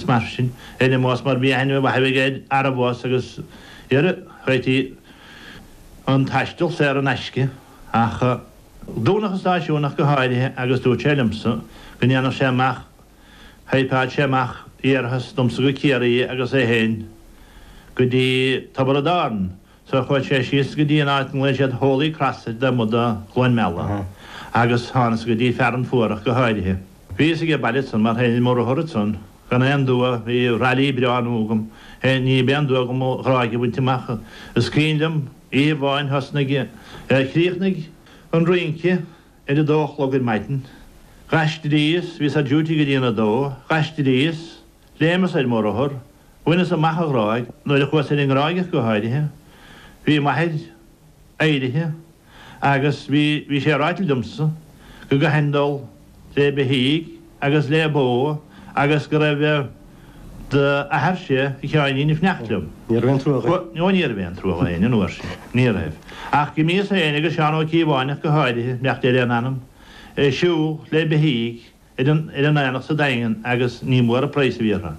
mar sin, ar na mbás mar bhí aithne mhaith aige air ara bhás agus ar réitigh an taistil saor in aisce, ach dúnadh an stáisiún ach go háirithe agus dúirt sé liomsa go ndéanfadh sé amach, thaipeálfadh sé amach iarrathas domsa go Ciarraí agus é fhéin go dtí Tiobraid Árann. So chuaidh sé síos go dtí an áit nglaodh siad Holy Cross taobh amuigh de Chluain Meala agus thánas go dtí Fearann Fuar ach go háirithe. Bhíos aige baile ansan mar tá mo rothar ansan gan aon dua, bhí Raleigh breá nua agam féin, níorbh aon dua dhom an Ghráig a bhaint amach is cuimhin liom oíche amháin thosnaigh, chríochnaigh an rince ar a dó a chlog ar maidin. Ghaistríos, bhíos ar duty go dtína dó, ghaistríos, Léimeas ar mo rothar, bhaineas amach an Ghráig, nuair a chuas ar an nGráig ach go háirithe, bhí m'athair éirithe agus bhí, bhí sé ag ráilt liomsa go gcaithfinn dul le beithígh agus le ba agus go raibh d'athairse, a Sheáinín, ag fanacht liom. Ní raibh aon truagh air. Ó ní raibh aon truagh air an uair sin, ní raibh. Ach d'imíos féin agus Seán Ó Cíobháin ach go háirithe, beannacht Dé lena anam, ag siúl le beithígh, ar an aonach sa Daingean agus ní mór an praghas a bhí orthu.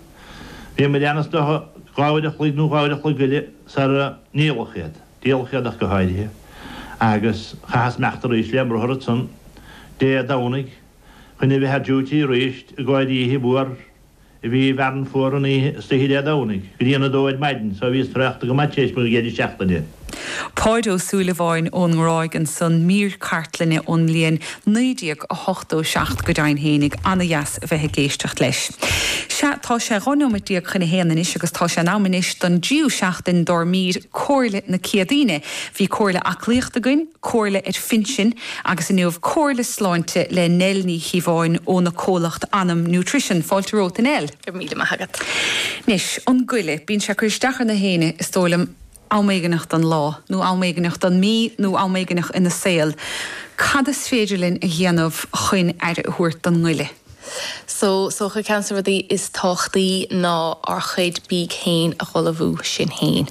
Bhíomair ansan dhá uair a chloig nó dhá uair a chloig eile sara ndíoladh iad, díoladh iad ach go háirithe agus chaitheas imeacht arís lem rothar ansan Dé Domhnaigh chun a bheith ar duty arís i gcomhair oíche mhór a bhí i bhFearann Fuar an oíche istoíche Dé Domhnaigh, go dtína 2 ar maidin, so bhíos traochta go maith tar éis mo chéad seachtaine. Páid Ó Súilleabháin ón nGráig ansan, mír cartlainne ón mbliain 1987 go deimhin fhéinig, ana-dheas a bheith ag éisteacht leis. Sea, tá sé 12 neomat chun a haon anois agus tá sé in am anois don dtríú seachtain dár mír Comhairle na Céadaoine. Bhí comhairle aclaíochta againn, Comhairle ar Phinsin agus inniu Comhairle Sláinte le Nell Ní Chíobháin óna comhlacht Anam Nutrition. Fáilte romhat, a Nell. Go raibh míle maith agat. Anois, an goile, bíonn sé ag cur isteach ar nach aoinne, is dóigh liom, am éigineach don lá, nó am éigineach don mí, nó am éigineach ina saol. Cad is féidir linn a dhéanamh chun aire a thabhairt don ngoile? So, is dócha, ceann de na rudaí is tábhachtaí ná ár chuid bídh féin a dh'ullmhú sinn féin.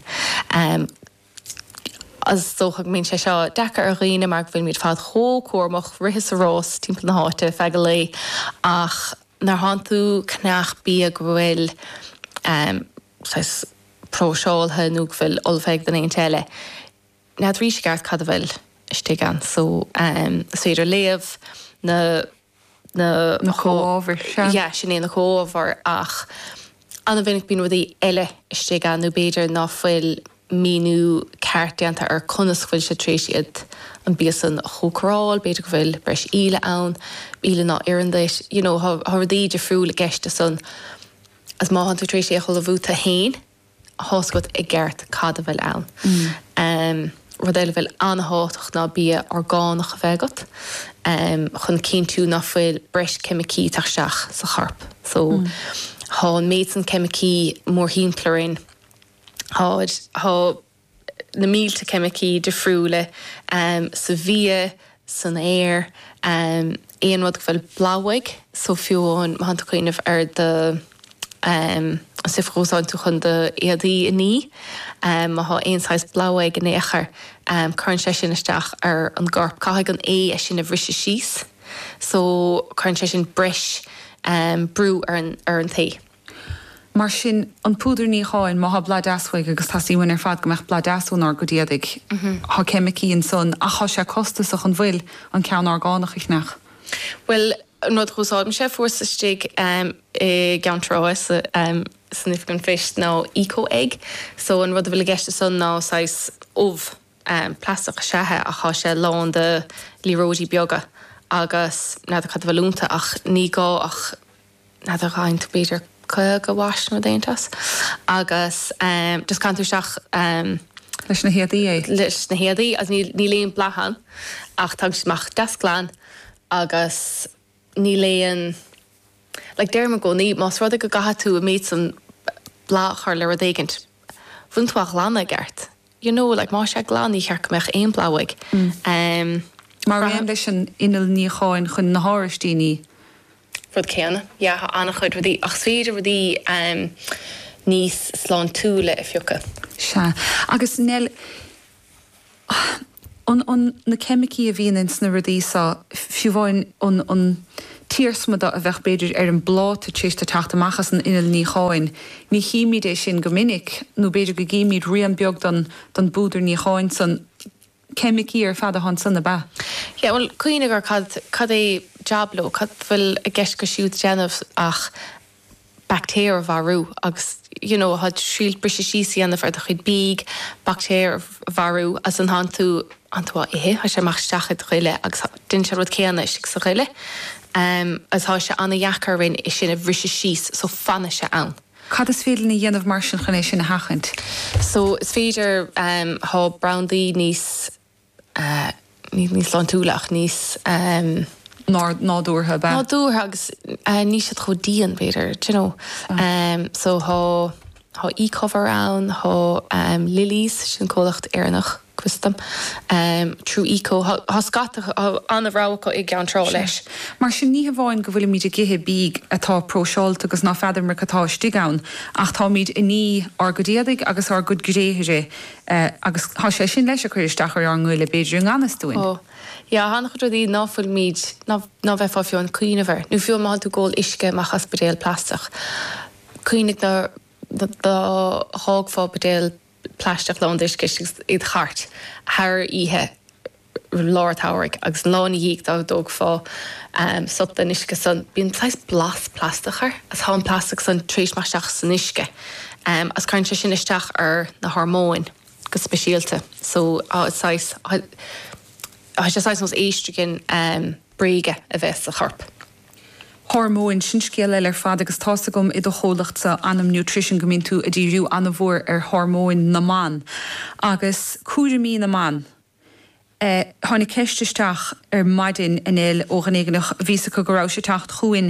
Is dócha go mbíonn sé seo deacair ar dhaoine mar go bhfuil muid fad chomh cúramach, rith is rás timpeall na háite feadh an lae, ach nuair atánn tú ag ceannach bia go bhfuil saghas próiseáilte nó go bhfuil ullmhaithe ag duine éigint eile, n'fheadaraís i gceart cad a bhfuil istigh ann. So is féidir léamh na. na comhábhair, sea. Yeah, sin é, na comhábhair, ach an-mhinic bíonn rudaí eile istigh ann nó b'fhéidir ná fuil míniú ceart déanta ar conas go bhfuil siad tar éis iad, an bia san a chócaráil, b'fhéidir go bhfuil breis íle ann, íle ná oireann duit, you know, tá rudaí difriúla i gceist san, agus má thánn tú tar éis é a ullmhú tú fhéin, thá a fhios agat i gceart cad a bhfuil ann. Rud eile a bhfuil an-thábhachtach ná bia orgánach a bheith agat chun cinntiú ná fuil breis ceimicí ag teacht isteach sa chorp. So, tá an méid san ceimicí mórthimpeall orainn. Tá. na mílte ceimicí difriúla sa bhia, san aer, aon rud go bhfuil boladh uaidh, so fiú amháin má thánn tú cuimhneamh ar do stuif a úsáideann tú chun do éadaí a ní, má thá aon saghas boladh uaidh in aon chor cuireann sé sin isteach ar an gcorp, caithfidh an ae é sin a bhriseadh síos so cuireann sé sin breis brú ar an t-ae. Mar sin, an púdar níocháin, má thá boladh deas uaidh, agus teastaíonn uainn ar fad go mbeadh boladh deas ón ár gcuid éadaigh, thá ceimicí ansan, ach thá sé costasach, an bhfuil, an ceann orgánach a cheannach? Bhuel, an rud dh'úsáidimse fuaireas istigh i gCeann Trá san oifig an phoist ná Eco-egg, so an rud a bhfuil i gceist ansan ná saghas ubh plaisteach is ea é ach thá sé lán de liathróidí beaga agus n'fheadar cad a bhfuil ionta ach ní gá ach N'fheadar faigheann tú b'fhéidir caoga wash nó rud éigint as agus just caitheann tú isteach Leis na héadaí é? leis na héadaí agus níl níl aon boladh ann ach tagann siad amach deas glan agus níl aon like deirim i gcónaí más rud é go gcaithfidh tú an méid san boladh a chur le rud éigint bhfuileann tú á ghlanadh i gceart you know like más sé glan ní cheart go mbeadh aon boladh uaidh mar aon leis an inneall níocháin chun na háraistí a ní. rud céanna yeah tá an-chuid rudaí ach is féidir rudaí em níos sláintiúla a phiocadh. Sea. Agus Nell, an, an, na ceimicí a bhíonn ins na rudaí so, fiú amháin an, an, t-iarsma de a bheadh b'fhéidir ar an bpláta tar éis di teacht amach as an inneall níocháin. Ní chímíd é sin go minic, nó b'fhéidir go gcímíd rian beag don don bpúdar níocháin san. Ceimicí ar fad atá ansan, ab ea? Yeah, bhuel, cuimhnigh ar cad, cad é jab leo, cad a bhfuil i gceist acu siúd déanamh ach baictéir a mharú agus you know tá siad ag triail briseadh síos a dhéanamh ar do chuid bídh, baictéir a mharú agus an tánn tú tánn tú á ithe théann sé amach isteach i do ghoile agus déanann sé an rud céanna istigh sa ghoile em agus tá sé an-dheacair orainn é sin a bhriseadh síos so fanann sé ann. Cad is féidir linn a dhéanamh mar sin chun é sin a sheachaint? So is féidir em tá brandaí níos. níos sláintiúla ach níos. nádúrtha ab ea? nádúrtha agus níl siad chomh dian, b'fhéidir, d'you know. So thá, thá Ecover ann, thá Lilly's, sin comhlacht Éireannach custaim, Tru Eco, thá scata, thá an-rogha acu i gCeann Trá leis. Sure. Mar sin ní hamháin go bhfuilimid ag ithe bídh atá próiseáilte agus ná feadramar cad atá istigh ann, ach táimid ag ní ár gcuid éadaigh agus ár gcuid gréithre Agus tá sé sin leis ag cur isteach ar ár ngoile b'fhéidir i ngan fhios dúinn. Ó, yeah, an-chuid rudaí ná fuilimid, ná, ná bheifeá fiú amháin ag cuimhneamh air, nó fiú má thánn tú ag ól uisce amach as buidéal plaisteach, cuimhnigh dá, dá dh'fhágfá buidéal plaisteach lán d'uisce istigh id' chairt thar oíche, lár an tsamhraidh agus lá ina dhiaidh dá dtógfá sup den uisce san, bíonn saghas blas plaisteach air, is tá an plaisteach san tar éis meath isteach san uisce, is cuireann sé sin isteach ar na hormóin go speisialta, so tá saghas, tá sé saghas nós estrogen bréige a bheith sa chorp. Hormóin, sin scéal eile ar fad agus tá's agam i do chomhlacht-sa, Anam Nutrition, go mbíonn tú a' díriú an-mhór ar hormóin na mban agus cúraimí na mban, Tháinig ceist isteach ar maidin inniu ó dhuine éigin bhí a fhios acu go rabhais ag teacht chugainn,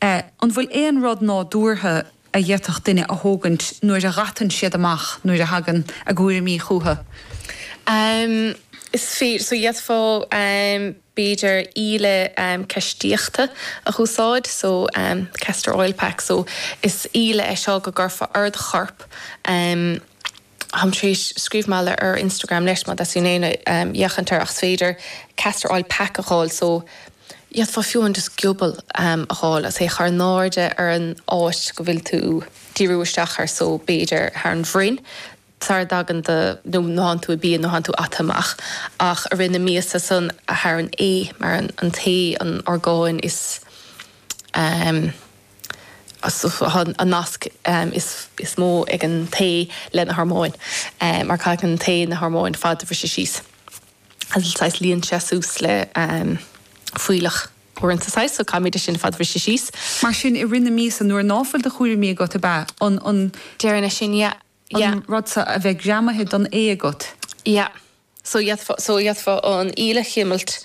an bhfuil aon rud nádúrtha a d'fhéadfadh duine a thógaint nuair a dh'atann siad amach, nuair a thagann a gcúraimí chucu? Is fíor, so d'fhéadfá b'fhéidir íle ceistíochta a úsáid, so castor oil pack, so is íle é seo go gcuirfeá ar do chorp, Táim tar éis scríobh mar gheall air ar Instagram leis má theastaíonn ó éinne féachaint air ach is féidir castor oil pack a dh'fháil so d'fhéadfá fiú amháin just giobal a dh'fháil agus é a chur in airde ar an áit go bhfuil tú díriú isteach air so b'fhéidir thar an bhroinn sara dtagann do nó thánn tú i bpian nó thánn tú ata amach ach i rith na míosa san thar an ae mar an t-ae an orgán is. an nasc is mó ag an t-ae le na hormóin mar caitheann an t-ae na hormóin ar fad a bhriseadh síos saghas líonann sé suas le fuílleach uaireanta saghas so caithimid é sin ar fad a bhriseadh síos. Mar sin i rith na míosa nuair ná fuil do chúraimí agat ab ea? An. Deireann é sin yeah. An rud so a bheith greamaithe don ae agat. Yeah. So d'fhéadfá, so d'fhéadfá an íle a chimilt,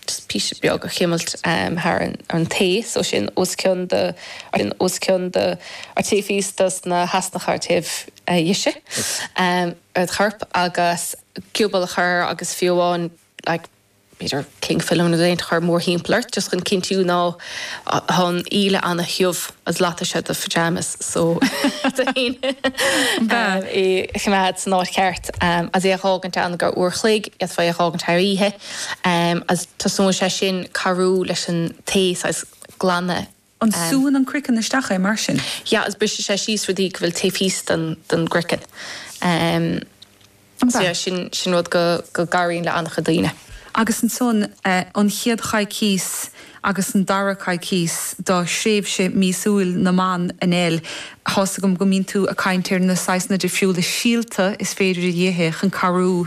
just píosa beag a chimilt thar an t-ae, so sin os cionn do, sin os cionn do, ar taobh thíos dos na heasnacha ar taobh dheise ar do chorp, agus giobal a chur agus fiú amháin like b'fhéidir cling film nó rud éigint a chur mórthimpeall ort just chun cinntiú ná tá an íle an-thiubh is loitfidh sé do phajamas so d'fhonn é a choimeád san áit cheart is é a dh'fhágaint ann go uair a chloig is fearr é a dh'fhágaint thar oíche is tosnóidh sé sin cabhrú leis an t-ae saghas glanadh An súann an croiceann isteach é mar sin? Yeah agus briseann sé síos rudaí go bhfuil taobh thíos den gcroiceann so yeah sin sin rud go go gcabhraíonn le an-chuid daoine. Agus ansan an chéad choicís agus an dara coicís do thréimhse míosúil na mban in L. tá's agam go mbíonn tú a' caint ar na saghsanna difriúla síolta is féidir a dh'ithe chun cabhrú